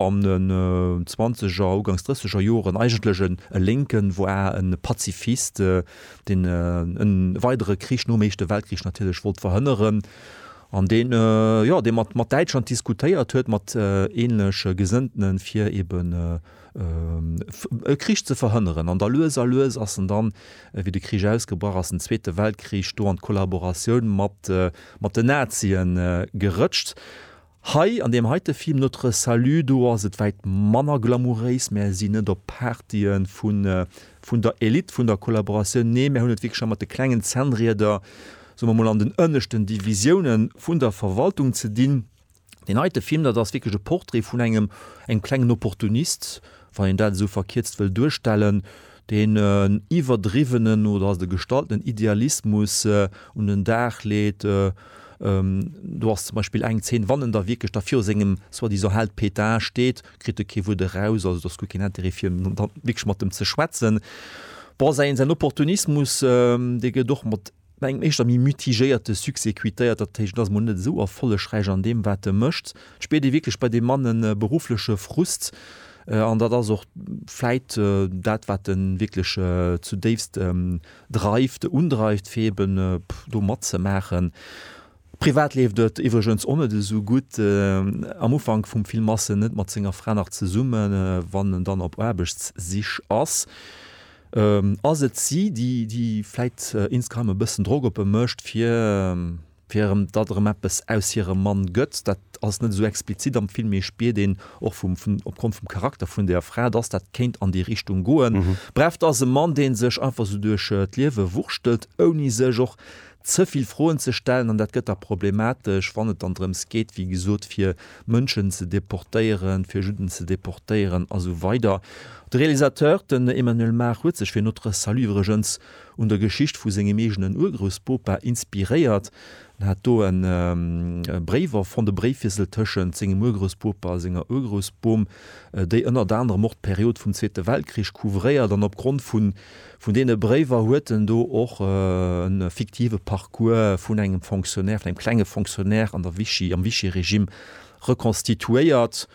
an den zwanzeger, ugangs drësseger Joren eigentlech e Lénken war, e Pazifist, deen e weidere Krich nom Éischte Weltkrich natierlech wollt verhënneren, an deen, jo, dee mat mat Däitschland diskutéiert huet, mat ähnlech Gesënnten, fir eben e Krich ze verhënneren. An da lues a lues ass en dann, wéi de Krich ausgebrach ass, den Zweete Weltkrich, do an d'Kollaboratioun mat mat den Nazien gerëtscht. Hei an deem heite Film Notre Salut do ass et wäit manner glamouréis. Mär sinn net op Partye vun der Elite vun der Kollaboratioun, nee mär hunn et wierklech ëmmer mat de klengen Zännrieder, soe mer mol, an den ënneschten Divisioune vun der Verwaltung ze dinn. Deen heite Film, dat ass wierklech e Portrait vun engem klengen Opportunist, wann een dat esou verkierzt wëll duerstellen. deen en iwwerdriwwenen oder de gestalltenen Idealismus un den Dag leet, do ass zum Beispill eng Zeen, wann en da wierklech da viru sengem soi-disant Held Pétain steet, kritt e kee Wuert eraus, also do ass guer keen Intérêt fir wierklech mat em ze schwätzen. Bon, säin Opportunismus, dee gëtt och mat Mä engem éischter méi mitigéierte Succès quittéiert, dat héicht, en ass emol net esou erfollegräich an deem, wat e mécht. Et spiert ee wierklech bei deem Mann e beruffleche Frust an dat ass och vläit dat, wat e wierklech zudéifst dreift, undreift, fir eeben do matzemaachen. Privat leeft et iwwregens och net esou gutt. Am Ufank vum Film ass en net mat senger Fra nach zesummen, wann en dann op Aarbechtssich ass. Ass et si, déi, déi vläit Instagram e bëssen Drock op e mécht, fir, fir erëm, datt erëm eppes aus hirem Mann gëtt? Dat ass net esou explizit am Film, mee ee spiert een och vum, vun, opgrond vum Charakter vun där Fra, datt dat kéint an déi Richtung goen. Bref, dat ass e Mann, dee sech einfach esou duerch d'Liewe wurschtelt, ouni sech och ze vill Froen ze stellen an dat gëtt da problematesch, wann et dann drëms geet, wéi gesot, fir Mënschen ze deportéieren, fir Judden ze deportéieren a sou weider. De Realisateur, den Emmanuel Mar, huet sech fir Notre Salut iwwregens un der Geschicht vu sengem eegenen Urgroussbopa inspiréiert. En hat do e Bréif erfonnt, e Bréifwiessel tëschent sengem Urgroussbopa a senger Urgroussbom, déi ënnert anerem och d'Period vum Zweete Weltkrich couvréiert an opgrond vu Vun deene Bréiwer huet en do och e fiktive Parcours vun engem Fonctionnaire, vun engem klenge Fonctionnaire an der Vichy, am Vichy-Regime rekonstituéiert.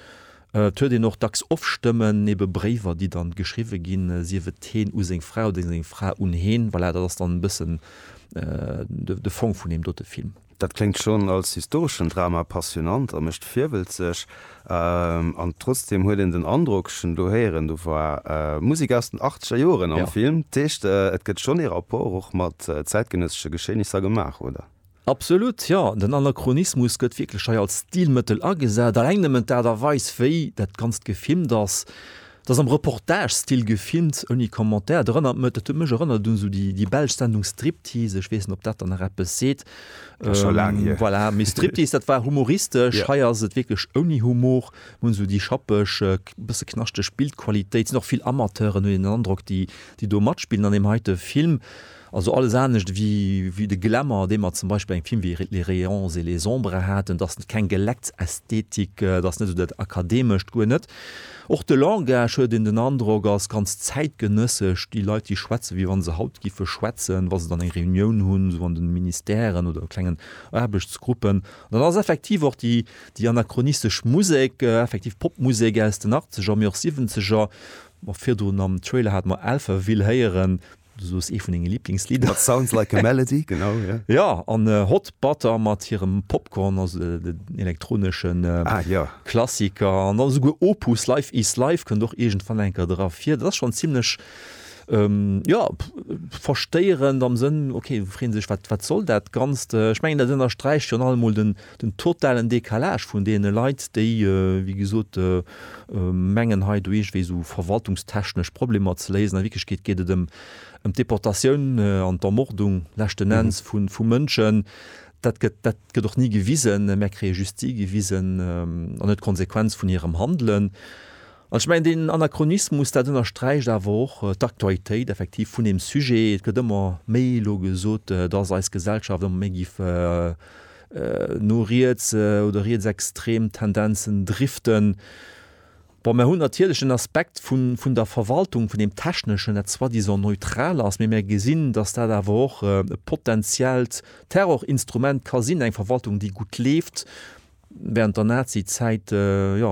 Et huet een och dacks Offstëmmen, ebe Bréiwer, déi dann geschriwwe ginn, sief et heen u seng Fra oder seng Fra un heen. Voilà, dat ass dann e bëssen de Fong vun deem dote Film. Dat kléngt schonn als historeschen Drama passionant a mécht virwëlzeg. An trotzdeem huet een den Androck, ech hunn elo héieren, do war Musek aus den achtzeger Joren am Film. Dat heescht, et gëtt schonn ee Rapport och mat zäitgenëssesche Geschehnisser gemaach, oder? Absolut, jo. Den Anachronismus gëtt wierklech hei als Stilmëttel agesat. Alleng nëmmen d'Aart a Weis, wéi dat Ganzt gefilmt ass, 't ass am Reportage-Stil gefilmt, ouni Commentaire. Et erënnert mech, dat huet mech erënnert un sou déi, déi belsch Sendung Striptease, ech weess net, ob dat der nach eppes seet. Dat ass scho laang hier. Voilà, mee Striptease, dat war humoristesch, hei ass et wierklech ouni Humor. Mir hunn sou déi schappeg, bësse knaschteg Bildqualitéit, sinn och vill Amateuren, hunn een den Androck, déi, déi do matspillen an deem heite Film. Also alles anescht ewéi de Glamour, dee mer zum Beispill bei engem Film ewéi Les rayons et les ombres haten, dat ass keng Gelecksästhetik, dat ass net esou dat Akademescht, guer net. Och de Langage, huet een den Androck, ass ganz zäitgenëssesch, déi Leit, déi schwätzen, wéi wa se haut géife schwätzen, wa se dann eng Reunioun hunn, esou an de Ministèren oder klengen Aarbechtsgruppen. An dann ass effektiv och déi anachronistesch Musek, effektiv Popmusek aus den Achtzeger, mee och Siwwenzeger, virdrun am Trailer hate mer Alphaville héieren, Du soos ee vun denge Liblingslidder. That sounds like a melody, genau, jo. Jo, an Hot Butter mat hirem Popcorn ass en elektronesche Klassiker. An da souguer Opus, Life is Life kënnt och iergendwann eng Kéier dra vir. Dat ass schonn zimlech, jo, verstëierend am Sënn, okay, du frees dech, wat soll dat Ganzt? Ech mengen, dat ënnersträicht virun allem emol den. Den totalen Décalage vun deene Leit, déi, wéi gesot, mengen hei do iergendwéi esou verwaltungstechnesch Problemer ze léisen, a Wierklechkeet geet et ëm d'Deportatioun an d'Ermordung leschten Enns vu Mënschen, dat gëtt, dat gëtt och ni gewisen, mä kréie just si gewisen, an net d'Konsequenz vun hirem Handelen. An ech mengen, deen Anachronismus, dat ënnersträicht awer och d'Aktualitéit effektiv vun deem Sujet. Et gëtt ëmmer méi elo gesot, dass eis Gesellschaft ëmmer méi géif no riets oder rietsextrem Tendenzen driften. Bon, mär hunn natierlech den Aspekt vun der Verwaltung, vun deem Techneschen, dat soi-disant neutral ass, mee mär gesinn, dass dat awer och e potenziellt Terrorinstrument ka sinn, eng Verwaltung, déi gutt leeft, während der Nazi-Zäit, jo,